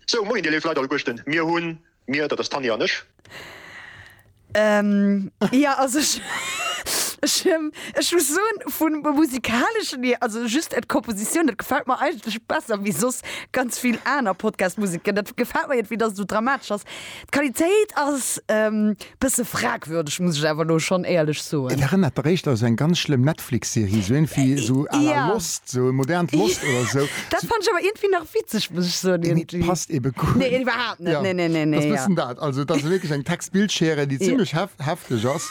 Sou, moien, Dir léif Leit allegueschten, mir hunn, mir, dat ass d'Tanja an ech. Jo, also ech, ech, ech muss soen, vum Musikaleschen hier, also just et d'Kompositioun, dat gefält mer eigentlech besser wéi soss ganz vill aner Podcast-Musiken. Dat gefält mer iergendwéi, dass et esou dramatesch ass. D'Qualitéit ass e bësse fragwürdeg, muss ech awer elo schonn éierlech soen. Et erënnert dach éischter esou eng ganz schlëmm Netflix-Serie, esou éinfwi esou à la Lost, esou e modernt Lost oder esou. Dat fannt ech awer iergendwéi nach witzeg, muss ech soen, iergendwéi. Nee, passt ebe guer net. Nee, iwwerhaapt net. Nee, nee, nee, nee. Et ass e bëssen dat. Also, et ass wierklech eng Text-Bild-Schere, déi zimlech hefteg ass.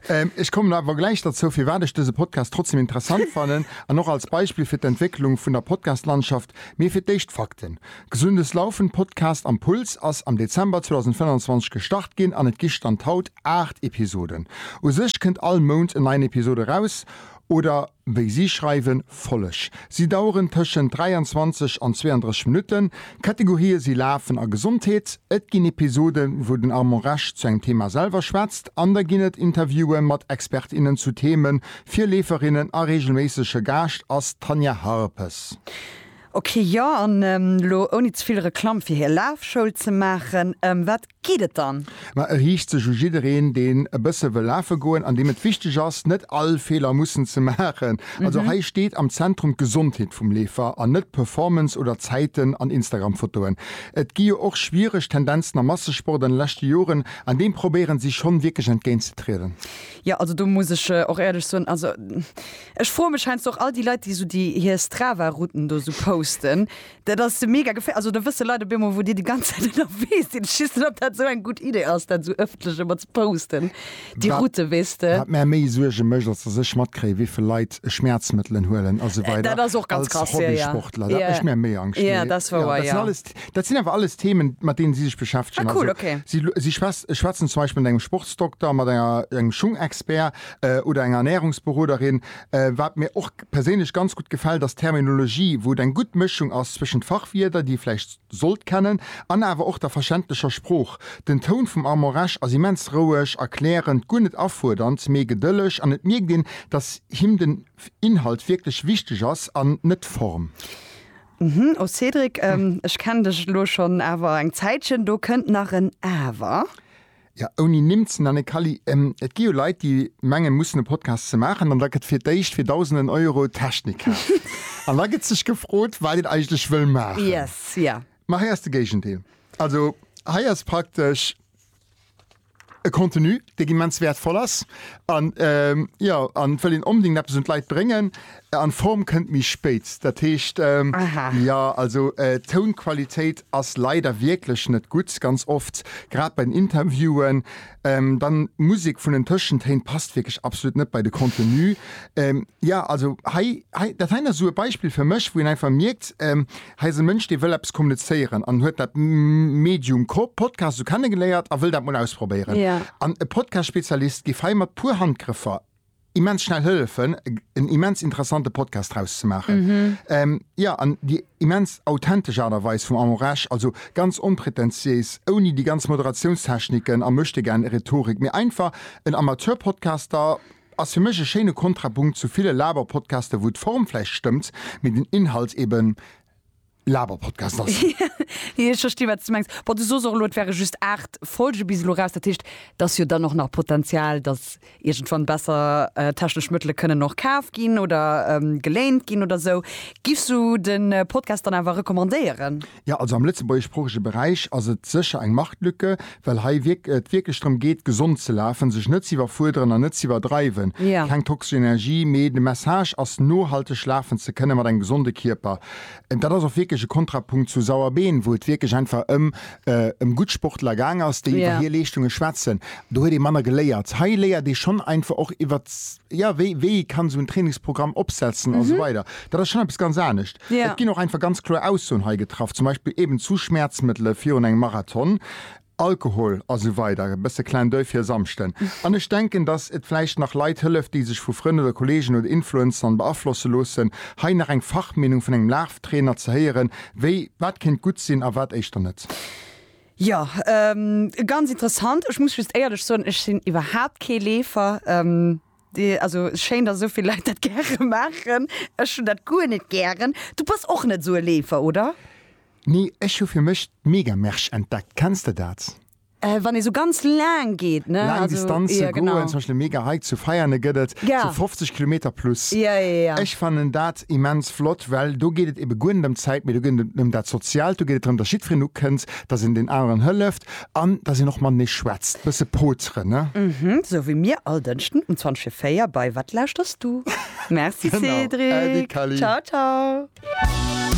Ech kommen awer gläich derzou, firwat ech dëse Podcast trotzdem interessant fannen an och als Beispill fir d'Entwécklung vun der Podcast-Landschaft. Mee fir d'éischt d'Fakten. Gesundes Laufen Podcast am Puls ass am Dezember 2025 gestart ginn an et gi Stand haut 8 Episoden. U sech kënnt all Mount en neien Episod eraus, oder wéi si schreiwen, Folleg. Si daueren tëschent 23 an 32 Minutten. D'Kategorië si Lafen a Gesondheet. Et ginn Episoden, wou den Armand Resch zu engem Thema selwer schwätzt an da ginn et Interviewen mat Expert, innen zu Themen fir Leeferinnen a reegelméissege Gaascht ass d'Tanja Harpes. Ok jo, an elo ouni ze vill Reklamm fir hir Lafschoul ze maachen, ëm wat geet et dann? Ma e riicht sech u jiddereen deen e bësse wëll lafe goen an deem et wichteg ass net all Feeler mussen ze maachen. Also hei steet am Zentrum d'Gesondheet vum Leefer an net d'Performance oder Zäiten an Instagram Fotoen. Et gi jo och schwiereg Tendenzen am Massesport an de leschte Joren an deem probéieren si schonn wierklech entgéint ze trieden. Jo, also do muss ech och éierlech soen, also Ech froe mech heiansdo och all déi Leit, déi esou déi hir Strava-Routen do esou posten. Dat ass mega geféierlech. Also do wësse Leit op eemol, wou Dir déi ganz Zäit ënnerwee sidd. Ech weess net, ob dat esou eng gutt Idee ass, dat esou ëffentlech ëmmer ze posten, déi Route, weess de. Wat mär méi Suerge mécht, ass, datt ech matkréien, wéi vill Leit Schmäerzmëttelen huelen a sou weider. Dat ass och ganz krass. Als Hobbysportler. Dat mécht mär méi Angscht. Jo, dat ass wouer, jo. Dat sinn alles, dat sinn awer alles Themen, mat deenen si sech beschäftegen. Ah cool, okay. Si schwätzen zum Beispill mat engem Sportsdokter, mat enger, engem Schungexpert, oder eng Ernährungsberoderin. Wat mir och perséinlech ganz gutt gefält ass d'Terminologie, wou et eng gutt Mëschung ass zwëschent Fachwierder, déi ee vläicht sollt kennen, an awer och der verständlecher Sprooch. Den Toun vum Armand Resch ass immens roueg, erklärend, guer net afuerdernd, mee gedëlleg an et mierkt een, dass him den Inhalt wierklech wichteg ass an net d'Form. Oh Cédric, ech kennen dech elo schonn awer eng Zäitchen, do kënnt nach en Awer. Jo, ouni Nimm ze nennen, Kally, et gi jo Leit, déi mengen, mussen e Podcast ze maachen an da gëtt fir d'éischt fir Dausenden Euro Technik kaaft. An da gëtt sech gefrot, wat een eigentlech wëll maachen. Yes, ja. Ma hei ass de Géigendeel. Also hei ass praktesch e Contenu, dee immens wäertvoll ass an, jo, an et wëll een onbedéngt eppes un d'Leit bréngen. An Form kënnt méi spéit, dat heescht, jo, also d'Tounqualitéit ass leider wierklech net gutt, ganz oft, grad bei den Interviewen. Dann d'Musek vun den Tëschentéin passt wierklech absolut net bei de Contenu. Jo, also hei, hei, dat heien ass esou e Beispill fir mech, wou een einfach mierkt, hei ass e Mënsch, dee wëll eppes kommunizéieren an huet dat Medium Podcast esou kennegeléiert a wëll dat mol ausprobéieren. An e Podcast-Spezialist géif hei mat puer Handgrëffer immens schnell hëllefen, en immens interessante Podcast draus ze maachen. Jo, an déi immens authentesch Aart a Weis vum Armand Resch, also ganz onpretentiéis, ouni déi ganz Moderationstechniken a Möchtegern-Rhetorik, mee einfach en Amateur-Podcaster, ass fir mech e schéine Kontrapunkt zu ville Laber-Podcaster, wou d'Form vläicht stëmmt, mee den Inhalt eben. Laberpodcast ass. Jo, ech versti wat s de mengs. Bon, du sos och elo, et wäre just 8 Folge bis elo eraus. Dat heescht, et ass jo dann och nach Potenzial, datt iergendwann besser technesch Mëttele kënnen och kaf ginn oder geléint ginn oder sou. Giffs du de Podcast dann awer recommandéieren? Jo, also am lëtzebuergeschsproochege Beräich ass et sécher eng Marktlücke, well hei et wierklech drëm geet, gesond ze lafen, sech net ze iwwerfuerderen an net ze iwwerdreiwen. Keng toxesch Energie, mee de Message ass, nohalteg lafen ze kënnen mat engem gesonde Kierper. Dat ass och wierklech e Kontrapunkt zu Sauerbeen, wou et wierklech einfach ëm ëm gutt Sportler gaang ass, déi iwwer hir Leeschtunge schwätzen. Do huet ee manner geléiert. Hei léiert ee schonn einfach och iwwer, jo, wéi wéi ee kann esou en Trainingsprogramm opsetzen a sou weider. Dat ass schonn eppes ganz anescht. Et ginn och einfach ganz kloer Aussoen hei getraff, zum Beispill eben zu Schmäerzmëttele virun engem Marathon. Alkohol a sou weider e bësse Clin d'oeil fir e Samschden. An ech denken, dass et vläicht nach Leit hëlleft, déi sech vu Frënn oder Kollegen oder Influencern beaflosse loossen, hei nach eng Fachmeenung vun engem Laaftrainer ze héieren, wéi wat kéint gutt sinn a wat éischter net. Jo, ganz interessant. Ech muss just éierlech soen, ech sinn iwwerhaapt kee Leefer. Also schéin dass esou vill Leit dat gäre maachen. Ech hunn dat guer net gären. Du bass och net esou e Leefer, oder? Nee, ech hu fir mech d'Megamersch entdeckt. Kenns de dat? Wann ee sou ganz laang geet, ne? Laang Distanze goen, zum Beispill mega hei zu Veiane gëtt et sou 50 Kilometer plus. Ech fannen dat immens flott, well do geet et ebe guer net ëm d'Zäit, mee do geet et ëm dat Soziaalt, do geet et drëm, dass jiddwereen ukënnt, dass een deen aneren hëlleft. An dass een och matenee schwätzt, bësse pooteren, ne? Mhm, sou wéi mir all Dënschden um 20 vir 4 bei Wat lauschters du? Merci Cédric, ciao ciao.